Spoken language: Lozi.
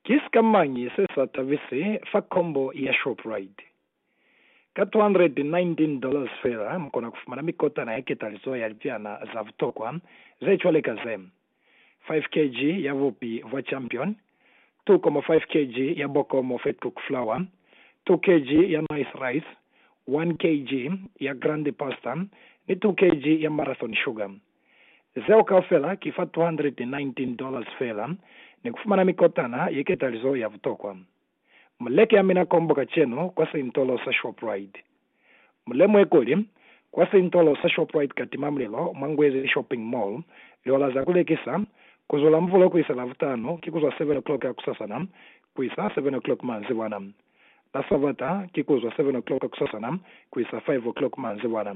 Ki sikamañi se sa tabise fa kombo ya Shoprite? Ka $219 dollars fela, mu kona ku fumana mikotana ya ketalizo ya lipiana za butokwa ze cwale ka ze, 5 kg ya bupi bwa Champion, 2.5 kg ya Bokomo Fat Cook Flour, 2 kg ya Nice Rice, 1 kg ya Grande Pasta, ni 2 kg ya Marathon Sugar. Zeo kaufela ki fa $219 dollars feela ni kufumana mikotana ye ketalizo ya butokwa. Mu leke amina kombo kacenu kwa seintolo sa Shoprite. Mu lemuhe kuli, kwa seintolo sa Shoprite ka timamulelo mwa Ngwezi Shopping Mall, liola za ku lekisa, ku zwa la Muvulo ku isa Lavutanu ki ku zwa 7 o'clock hakusasana ku isa 7 o'clock manzibwana. La Sabata ki ku zwa 7 o'clock hakusasana ku isa 5 o'clock manzibwana.